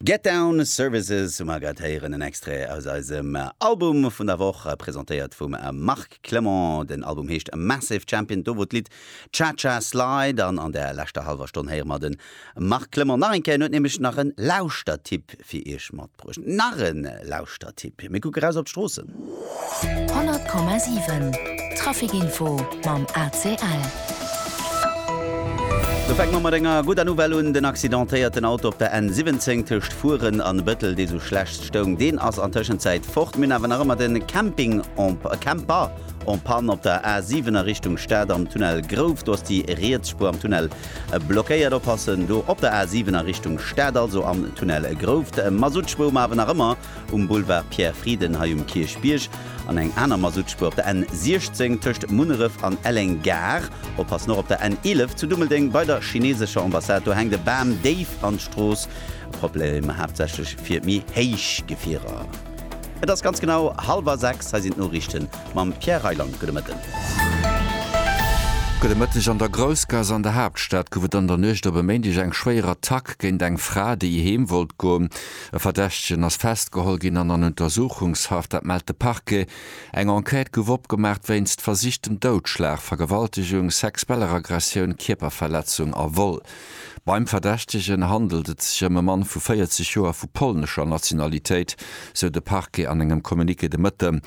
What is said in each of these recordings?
Get Down Services hu mer grad héieren, en Extrait aus eisem Album vun der Woch, presentéiert vum Marc Clement. Den Album heescht Massive Champion, do wor d'Lidd Cha Cha Slide. An an der leschter hallwer Stonn héiere mer de Marc Clement nach eng Kéier, en huet nämlech nach e Lauschtertipp fir iech mat. Bruecht nach e Lauschtertipp, mir kucke raus op d'Stroossen. 100,7 Traficinfo mam ACL. Do fänke mer mat enger gudder Nouvelle un, Den accidentéierten Auto op der N 17 tëscht Furen an Bëttel, dee sou schlecht stoung, deen ass an Tëschenzäit fort. Mir hunn awer nach ëmmer de Camping en, Camper en panne op der A 7 a Richtung Stad am Tunnel Grouf, do ass déi riets Spuer am Tunnel. Blockéiert oppassen do op der A7 a Richtung Stad, also am Tunnel Grouft. Masuttspuer um Awen nach ëmmer um Boulevard Pierre Frieden hei um Kierchbierg an eng aner Masuttspuer op der N16 tëscht Munneref an Elleng Gare. Oppassen och op der N11 zu Dummeldeng bei der chinesescher Ambassade, do hänkt e Bam déif an d'Strooss. Problemer haaptsächlech fir méi héich Gefierer. Et ass ganz genau halwer sechs. Hei sinn d'Noriichten mam Pierre Reyland. Gudde Mëtten. Gudde Mëtteg. An der Groussgaass an der Haaptstad gouf et an der Nuecht op e Méindeg eng schwéier Attack géint eng Fra, déi heem wollt goen. E Verdächtegen ass festgeholl ginn an an Untersuchungshaft, dat mellt de Parquet. Eng Enquête gouf opgemaach wéinst versichtem Doudschlag, Vergewaltegung, sexueller Aggressioun, Kierperverletzung a Vol. Beim Verdächtegen handelt et sech ëm e Mann vu 40 Joer vu polnescher Nationalitéit, sou de Parquet an engem Communiqué de Mëtte.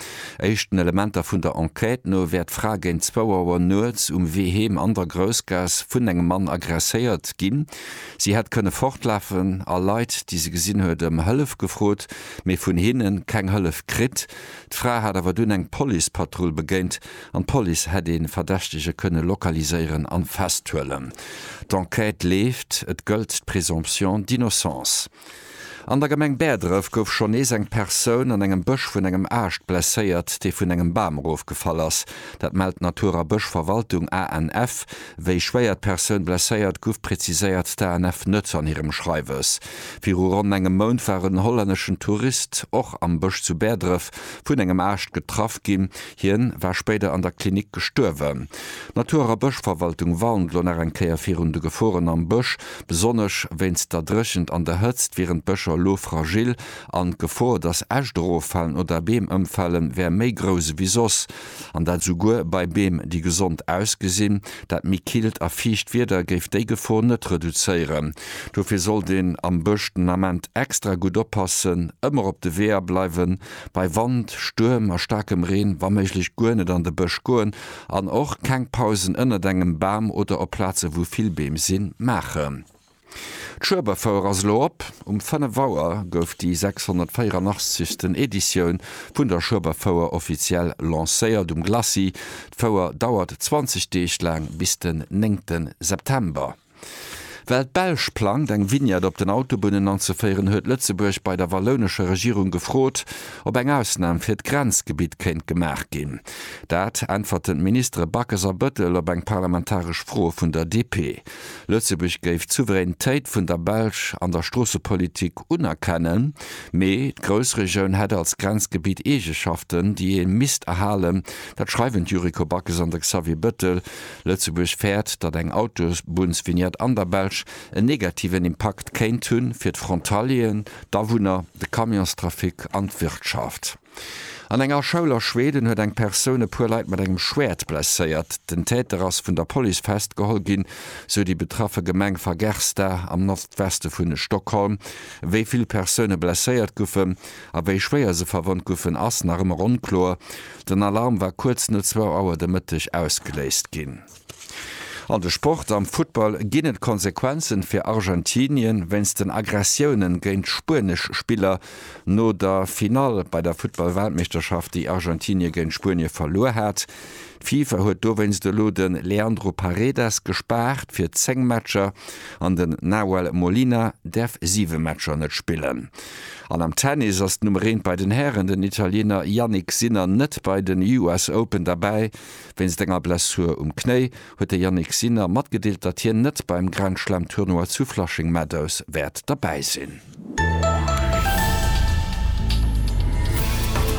Éischten Elementer vun der Enquête no wär d'Fra géint zwou Auer nuets um Wee heem an der Groussgaass vun engem Mann agresséiert ginn. Si hätt kënne fortlafen a Leit, déi se gesinn huet, ëm Hëllef gefrot, mee vun hinne keng Hëllef kritt. D'Fra hat awer dunn eng Policepatrull begéint. An d'Police hätt ee Verdächtege kënne lokaliséieren a festhuelen. D'Enquête leeft, et gëllt d'Présomption d'innocence. An der Gemeng Bäerdref gouf schonn nees eng Persoun an engem Bësch vun engem Aascht blesséiert, dee vun engem Bam erofgefall ass. Dat mellt d'Natur a Bëschverwaltung, ANF. Wéi schwéier d'Persoun blesséiert guff, präziséiert d'ANF net an hirem Schreiwes. Viru ronn engem Mount war en hollänneschen Tourist och am Bësch zu Bäerdref vun engem Aascht getraff ginn. Hien war spéider an der Klinik gestuerwen. D'Natur a Bëschverwaltung warnt elo nach eng Kéier virun de Geforen am Bësch. Besonnesch wéinst der Dréchent an der Hëtzt wieren d'Bëscher elo fragil an d'Gefor, datt Äscht eroffalen oder Beem ëmfalen, wär méi grouss ewéi soss. An dat esouguer bei Beem, déi gesond ausgesinn. Dat méi killt a fiicht Wieder géif déi Gefor net reduzéieren. Dofir sollt een am Bësch den Ament extra gutt oppassen, ëmmer op de Weeër bleiwen Bei Wand, Stuerm a staarkem Reen wa méiglech guer net an de Bësch goen an och keng Pausen ënnert engem Bam oder op Plaze wou vill Beem sinn, maachen. D'Schueberfouer ass elo op. Um 5 Auer gouf déi 684. Editioun vun der Schueberfouer offiziell lancéiert um Glacis. D'Fouer dauert 20 Deeg laang bis den 9 September. Well d'Belsch plangt, eng Vignette op den Autobunnen anzeféieren, huet Lëtzebuerg bei der wallounescher Regierung gefrot, ob eng Ausnam fir d'Grenzgebitt kéint gemaach ginn. Dat äntwerten d'Ministere Backes a Bëttel op eng parlamentaresch Fro vun der DP. Lëtzebuerg géif d'Souveränitéit vun der Belsch an der Stroossepolitik unerkennen, mee d'Groussregioun hätt als Grenzgebitt Eegeschaften, déi ee misst erhalen. Dat schreiwen d'Yuriko Backes an de Xavier Bëttel. Lëtzebuerg fäert, datt eng Autobunnsvignette an der Belsch en negativen Impakt kéint hu fir d'Frontalieren, d'Awunner, de Camionstrafic an d'Wirtschaft. An enger Schoul a Schweden huet eng Persoun e puer Leit mat engem Schwäert blesséiert. Den Täter ass vun der Police festgeholl ginn, sou déi betraffe Gemeng Fagersta am Nordweste vu Stockholm. Wéi vill Persoune blesséiert goufen, A wéi schwéier se verwonnt goufen, ass nach ëmmer onkloer. Den Alarm war kuerz no zwou Auer de Mëtteg ausgeléist ginn. An de Sport, Am Futtball ginn et Konsequenzen fir Argentinien wéinst den Aggressiounen géint spuenesch Spiller no der Finall bei der Futtball-Weltmeeschterschaft, déi Argentinie géint Spuenie verluer hat. D'Fifa huet dowéinst elo de Leandro Paredes gespaart fir 10 Matcher an den Nahuel Molina däerf 7 Matcher net spillen. An am Tennis ass d'Nummer eent bei den Hären, den Italiener Jannik Sinner net bei den US Open derbäi. Wéinst enger Blessur um Knéi huet de Jannik Sinner matgedeelt, datt hien net beim Grand-Slam-Tournoi zu Flushing Meadows wäert derbäi sinn.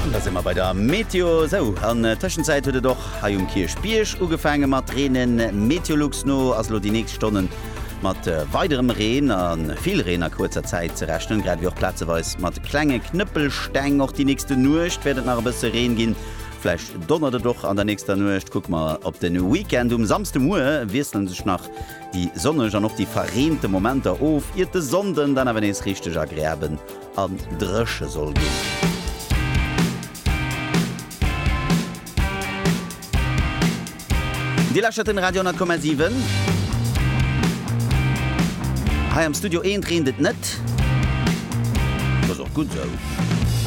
An da si mer bei der Meteo. Sou, an Tëschenzäit huet et och hei um Kierchbierg ugefaange mat reenen. Meteolux no ass elo déi nächst Stonne mat weiderem Reen a vill Reen a kuerzer Zäit ze rechnen, grad ewéi och plazeweis mat klenge Knëppelsteng. Och déi nächste Nuecht wäert et nach e bësse Reen ginn, vläicht donnert et och an der nächster Nuecht. Kucke mer op de Weekend, Um Samsdemuer wiessele sech nach déi sonneg an och déi verreente Momenter of, iert de Sonnden dann awer nees richteg agreabel an dréche soll ginn. Dir läschert den Radio 10,7. Hei am Studio 1 reent et net. Dat ass och gutt esou.